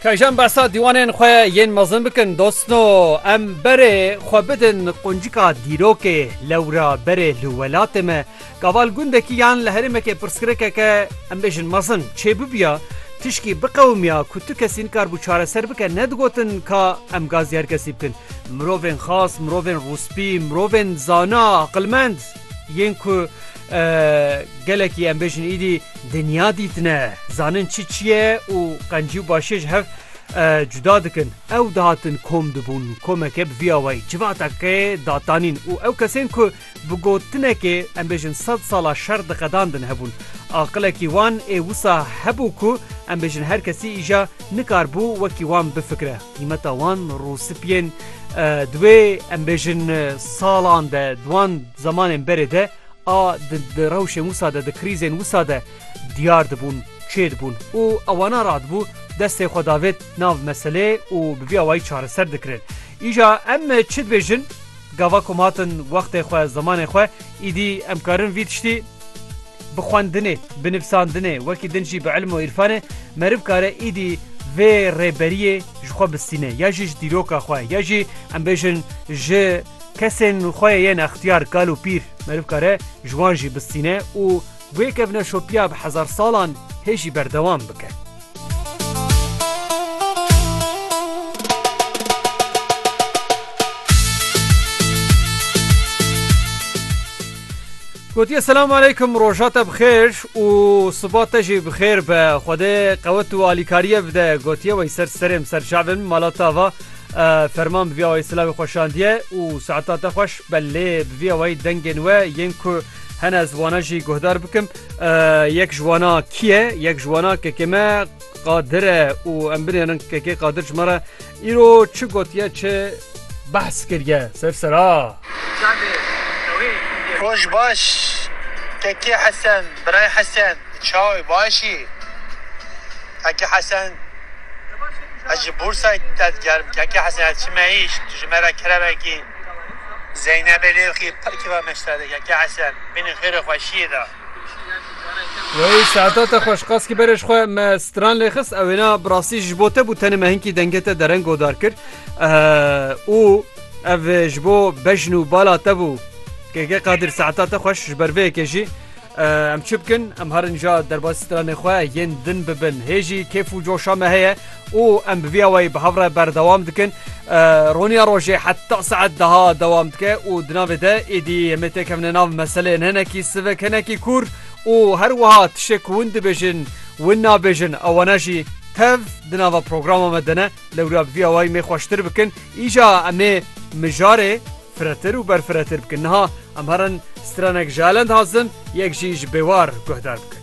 Kejn besa dîwanên xwe yên mezin bikin dostno em berê xwe bidin quncika dîrokê lewra berê li welatê me gaval gundekî yan li herêmekê pirsgirêkeke em bêjin mezin çê bibiya tişkî biqewimiya ku tu kesî nikarbû çareser bike nedigotin ka em gazî her kesî bikin mirovên xas mirovên rûspî mirovên zana aqilmend Yên ku gelekî em bêjin îdî dinya dîtine, zanin çi çi ye û qencî û başiyê ji hev cuda dikin. Ew dihatin kom dibûn, komeke bi vî awayî, civateke datanîn û ew kesên ku bi gotinekê em bêjin sed sala şer diqedandin hebûn. Aqilekî wan ê wisa hebû ku em bêjin her kesî îja nikaribû wekî wan bifikire. Qîmeta wan rûspiyên divê em bêjin salan de di wan zemanên berê de a di rewşên wisa de di krîzên wisa de diyar dibûn, çêdibûn û ewana radibû destê xwe davêt nav meseleyê û bi vî awayî çareser dikirin. Îja em çi dibêjin? Gava ku em hatin wextê xwe, zemanê xwe, îdî em karin vî tiştî. Bi xwendinê, bi nivsandinê wekî din jî bi ilm û îrfanê meriv kare îdî vê rêberiyê ji xwe bistîne ya jî ji dîroka xwe ya jî em bêjin ji kesên xwe yên extiyar kal û pîr meriv kare ji wan jî bistîne û wê kevneşopiya bi hezar salan hê jî berdewam bike. Gotiye selam aleykum roja te bixêr û siba te jî bixêr be Xwedê qewet û alîkariye bide gotiye wey ser serêm ser çavin mala te va ferman biviya wey silavê xweşandiye û saeta te xweş belê biviya wey dengên we yên ku Hene ez wana jî guhdar bikim yek ji wana kî ye yek ji wana kekê me qadir e û em binêrin kekê qadir ji me re îro çi gotiye çi behs kiriye ser sera. Roj baş kekê hesen birayê hesen çaw î başî kekê hesen ez ji bûrsayê te digerim kekê hesen ez çime îş tu ji me re keremekî. Zeynebê lê xî pir keva meşta dike ke Esen bîne xêrê xwe şiyê da. Wey Şehda te xweş qas ki berê ji xwe me stran lê xist ew êna bi rastî ji bo te bû tenê me hinkî dengê te dereng godar kir û ev ji bo bejn û bala te bû. Keke Qadir saeta te xweş ji ber vê yekê jî Em çi bikin? Em herin ja derbasî stranên xwe yên din bibin. Hê jî kêf û coşa me heye û em bi vî awayî bi hev re berdewam dikin. Roniya rojê heta saet deha dewam dike û di navê de êdî em ê têkevine nav meseleyên hinekî sivik, hinekî kûr û her wiha tiştê ku hûn dibêjin, win nabêjin ewana jî tev di nava programa me de ne. Lewra bi vî awayî mêr xweştir bikin. Îja em ê mijarê. Firetir û berfiretir bikin. Niha em herin strenek ji elend hazin, yek jî ji bêwar guhdar bikin.